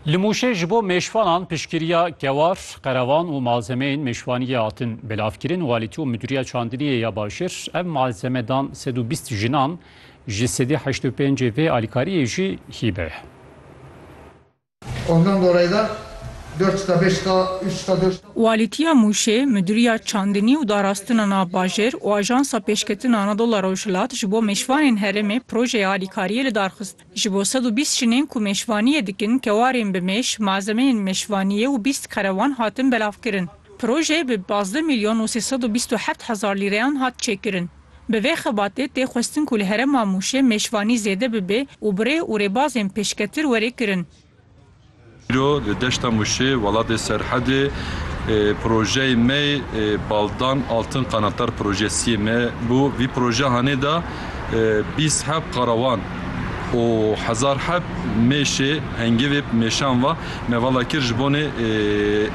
Li Mûşê ji bo mêşvanan piştgiriya kewar, qerevan û malzemeyên mêşvaniyê hatin belavkirin. Walîtî û Midûriya Çandiniyê ya Başir ev malzeme dan sed û bîst jinan, ji sedî heşt û pêncê vê alîkariyê jî hîbe ye. Walîtiya Mûşê, Midûriya Çandinî û Darastina Navbajêr û Ajansa Pêşketin Anadolu Rojhilat ji bo mêşvanên herêmê projeya alîkariyê li dar xist. Ji bo sed û bîst jinên ku mêşvaniyê dikin, kewarên bi mêş, malzemeyên mêşvaniyê û bîst karewan hatin belavkirin. Proje bi pazdeh mîlyon û sê sed û bîst û heft hezar lîreyan hat çêkirin. Bi vê xebatê tê xwestin ku li herêma Mûşê mêşvanî zêde bibe û bi rê û rêbazên pêşketir were kirin. Îro li deşta Mûşê welatê Serhedê projeyê me yê Baldan Altın Qanatlar projesi yê me bû. Vî proje hanê da bîst heb qarawan û hezar heb mêşê hengivê mêşan va me vala kir ji bonê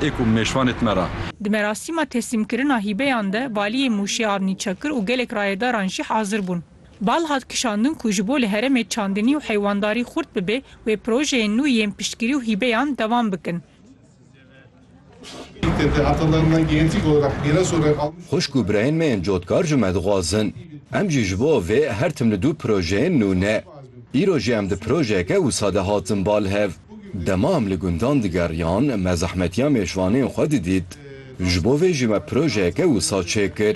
ê ku mêşvanê tme ra. Di merasîma teslîmkirina hîbeyan de valiyê Mûşê Avnî Çakir û gelek rayedaran jî hazir bûn. Bal hat kişandin ku ji bo li herêmê çandinî û heywandarî xurt bibe, wê projeyên nû yên piştgirî û hîbeyan dewam bikin. Xwişk û birayên me yên cotkar ji me dixwazin em jî ji bo vê her tim li du projeyên nû ne. Îro jî em di projeyeke wisa de hatin bal hev. Dema em li gundan digeriyan me zehmetiya mêşvanên xwe didît. Ji bo vê jî me projeyeke wisa çêkir.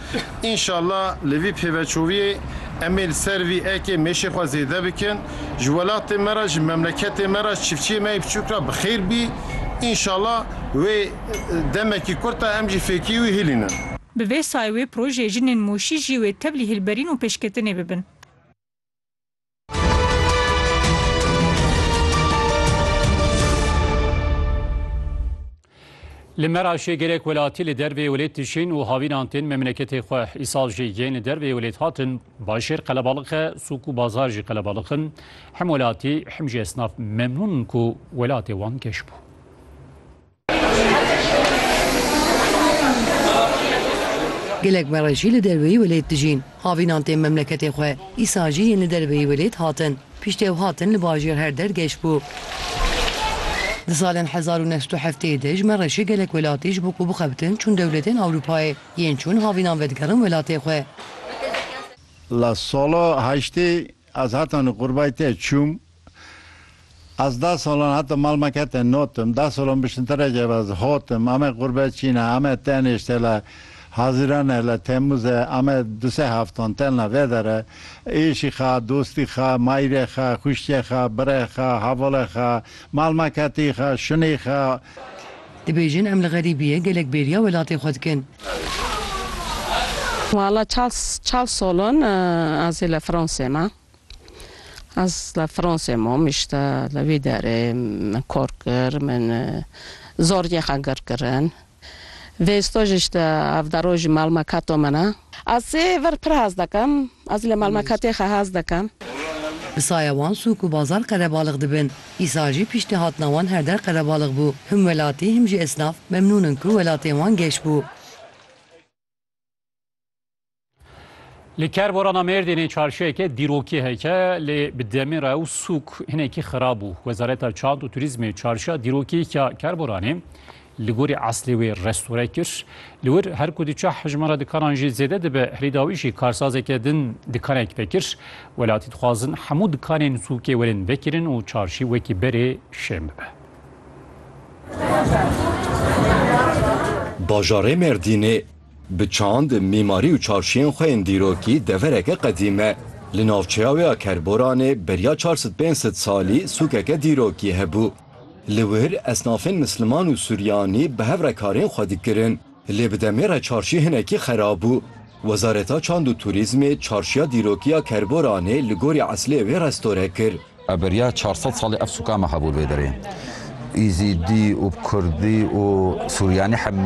Înşallah li vî pêveçûviyê em ê li ser vî ekê mêşê xwe zêde bikin. Ji welatê me re, ji memleketê me re, ji çiftçiyê me yê biçûk re bi xêr bî. Înşallah wê demekî kurt e em jî fêkî wî hilînin. Bi vê sayê wê projeyê jinên Mûşî jî wê tevlî hilberîn û pêşketinê bibin. Li Meraşê gelek welatî li dervê welêt dijîn û havînan tên memleketê xwe. Îsal jî yên li dervê welêt hatin başêr qelebalix e, sûk û bazar jî qelebalix in. Hem welatî hem jî esnaf memnûn in ku welatê wan geş bû. Gelek me re jî li derveyî welêt dijîn. Avînan tên memleketê xwe. Îsal jî yên li derveyî welêt hatin. Pişt ew hatin li bajêr her der geş bû. Di salên hezar û neh sed û heftê yê de ji me re jî gelek welatî ji bo ku bixebitin çûn dewletên Ewropayê. Yên çûn havînan vedigerin welatê xwe. La sala heştê ez hetanî qurbayê te çûm. Ez da salan heta mal me kete notim, da salan bişinterekê ve ez hatim, ame qurbe çîne, ame tenêşte le Hazirane le Temûze, ame du sê heftan telna vê dere, êşî xwe, dostî xwe, mayîrê xwe, xwişkê xwe, birê xwe, hevalê xwe, mal me ketî xwe, şunî xwe. Dibêjin em li xerîbiyê gelek bêriya welatê xwe dikin. Wala çar çar salan ez ê li Fransê me. Ez li Fransê mam îşte li wî derê min kar kir min zor yê xwe gir kirin vê staj îşte ev dero jî malmekato min e. Ez sê vir pir hez dikim ez li malmekatê xwe hez dikim. Bi saya wan sûk û bazar qelebalix dibin. Îsal jî pîştîhatina wan her der qelebalix bû. Him welatî him jî esnaf memnûn in ku welatê wan geş bû. Li kerborana Mêrdînê çarşiyeke dîrokî heke lê bi demê re û sûk hinekî xirab bû. Wezareta Çand û Turîzmê çarşiya dîrokî ya kerboranê li gorî eslê wê restore kir. Li wir her ku diçe hejmara dikanan jî zêde dibe, herî dawî jî karsazeke din dikanek vekir. Welatî dixwazin hemû dikanên sûkê werin vekirin û çarşî wekî berê şên bibe. Bajarê Mêrdînê Bi çand, mîmarî û çarşiyên xwe yên dîrokî devereke qedîm e. Li navçeya wê ya Kerboranê beriya çar sed pênc sed salî sûkeke dîrokî hebû. Li wir esnafên misliman û suryanî bi hev re karên xwe dikirin. Lê bi demê re çarşî hinekî xerab bû. Wezareta Çand û Turîzmê çarşiya dîrokî ya Kerboranê li gorî eslê wê restore kir. Beriya çar sed salî ev sûkan me hebû li vê derê. Îzîdî û Kurdî û Suryanî hemî